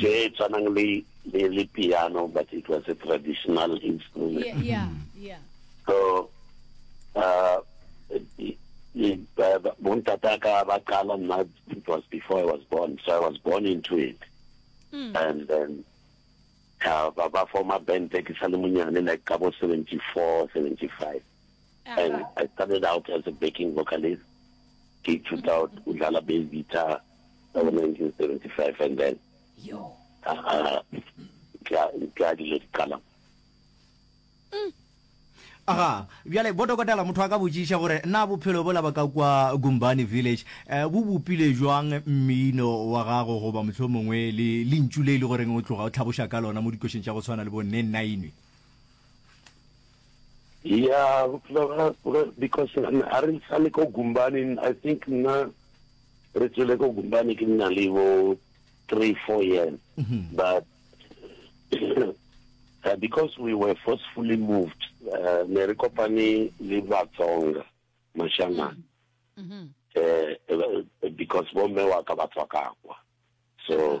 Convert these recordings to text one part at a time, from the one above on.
tše tshwanang le le le piano but it was a traditional instrument yeah, yeah, mm-hmm. yeah. so uh, bontata ka ba qala nna it was before i was born so i was born into it mm. and then uh, ba ba forma band ke sa le monyane like ka bo 74 75 and i started out as a backing vocalist ke ithuta o dlala bass guitar ka bo 1975 and then ka dilo di qala mm. aga bjale bo dokotela motho a ka botšiša gore na bophelo bola ba ka kwa gumbani village um bo bopile jwang mmino wa gago goba motlho mongwe le lentšu le e le goreng o tloga o tlhaboša ka lona mo dikošeng tša go tshwana le bo nne nine ya because a re sale ko gumbaneng i think nna Re tswile ko Gubane ke nna le bo three, four years. Mm-hmm. But uh, because we were forcefully moved, uh, ne re kopane le Batsonga, Mashanana. Mm-hmm. Uh, because bomme wa ka ba tswa kakwa. So, yeah.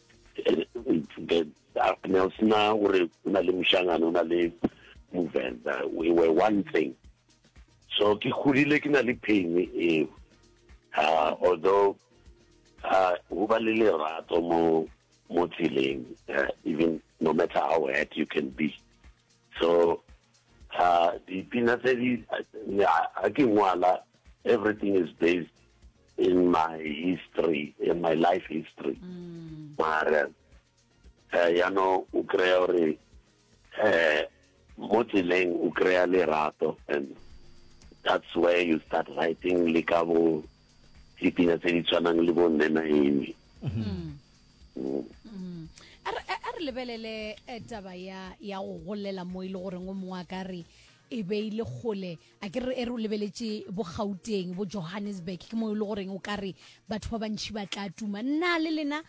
ne o sena gore o na le mošangane o na le movenda we were one thing so ke godile ke na le pain eo uh, although uh, go ba le lerato mo mo tseleng uh, even no matter how hurt you can be so uh, dipina tse di a ke ngwala everything is based in my history in my life history mm. mara eh ya no o kry gore eh mo tseleng o kry lerato and that's where you start writing le ka bo dipina tse di tshwanang le bo nne na eme mm. mm. mm. a re lebelele eh, taba ya go golela mo e le goreng o mongwe a ka re e beile kgole a ke re e re o lebeletše bo gauteng bo johannesburg ke mo e le goreng o ka re batho ba bantšhi ba tla tuma nna le lena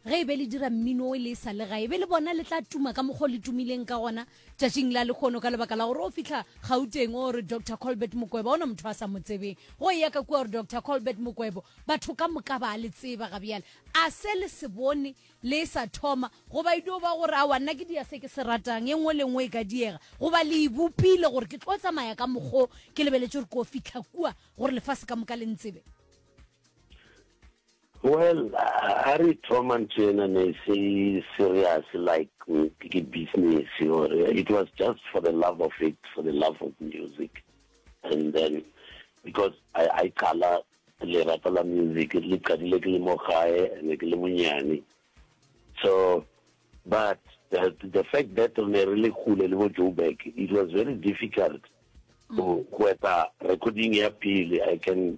ge e be le dira mmino o e le e sa le ga e be le bona le tla tuma ka mokgwa o le tumileng ka gona tšatšing la lekgono ka lebaka la gore o fitlha gauteng o re dr colbert mokwebo ona motho a sa mo tsebeng go e ya ka kua gore dr colbert mokwebo batho ka moka ba le tseba ga bjale a se le se bone le e sa thoma, goba e dio ba gore, Aowa, nna ke dia se ke se ratang, e nngwe le e nngwe e ka diega. Goba le e bopile gore, Ke tlo tsamaya ka mokgwa o, ke lebeletše gore ko fihla kua, gore lefase ka moka le ntsebe. Well, ha re thoma ntho ena ne e se serious like ke business, or it was just for the love of it, for the love of music. And then, because I, I qala Lerato la music re le qadile ke le mo gae ne ke le monyane so but the fact that re ne re le kgole le bo Joburg it was very difficult go go eta recording ya pele I can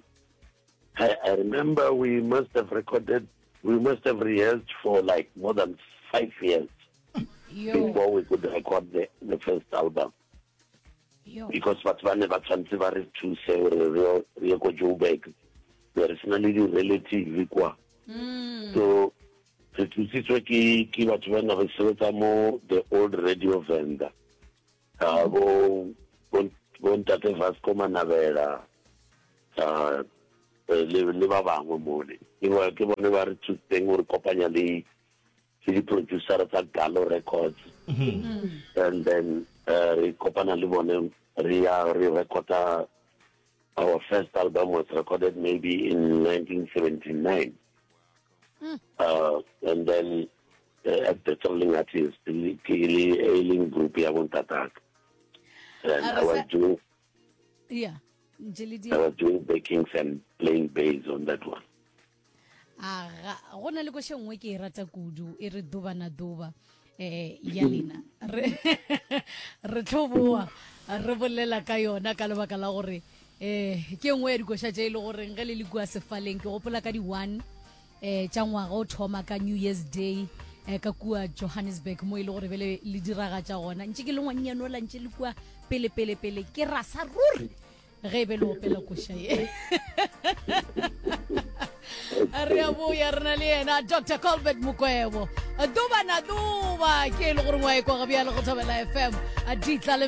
I, I remember we must have recorded we must have rehearsed for like more than five years Yo. before we could record the, the first album because batho ba ne ba tshwanetse ba re thuse gore re ye ko joburg be re sena le di-relative kwa mm. so re thusitswe ke ke batho ba ne re sebetsa mo the old radio vendor uh, bo bontate vasco manabela uh, le, le ba bangwe mole ke bone ba re thusitseng gore kopanya le ke di-producer tsa Galo Records and then uh, re kopana le bone re ya re recorda our first album was recorded maybe in 1979 hmm. uh, and then uh, at the traveling artist ke le e leng group ya bontataka and i was doing yeah i was doing backings and playing bass on that one aga go na le koše nngwe ke e rata kudu e re duba na duba eh ya lena re re tlhoboa re bolela ka yona ka lebaka la gore eh ke nngwe ya dikoša tše e le goreng ge le le kua sefaleng ke gopola ka di-one eh tša ngwaga o thoma ka new year's day eh ka kua johannesburg mo e le gore be le le diragatša gona ntše ke le ngwannyane o la ntše le kua pele pele pele ke rasa ruri ge e be le opela koša ye re a boya re na le yena dr colbert mokwebo duba na duba ke e le goreng wa e kwa gabjale go thobela fm a ditla le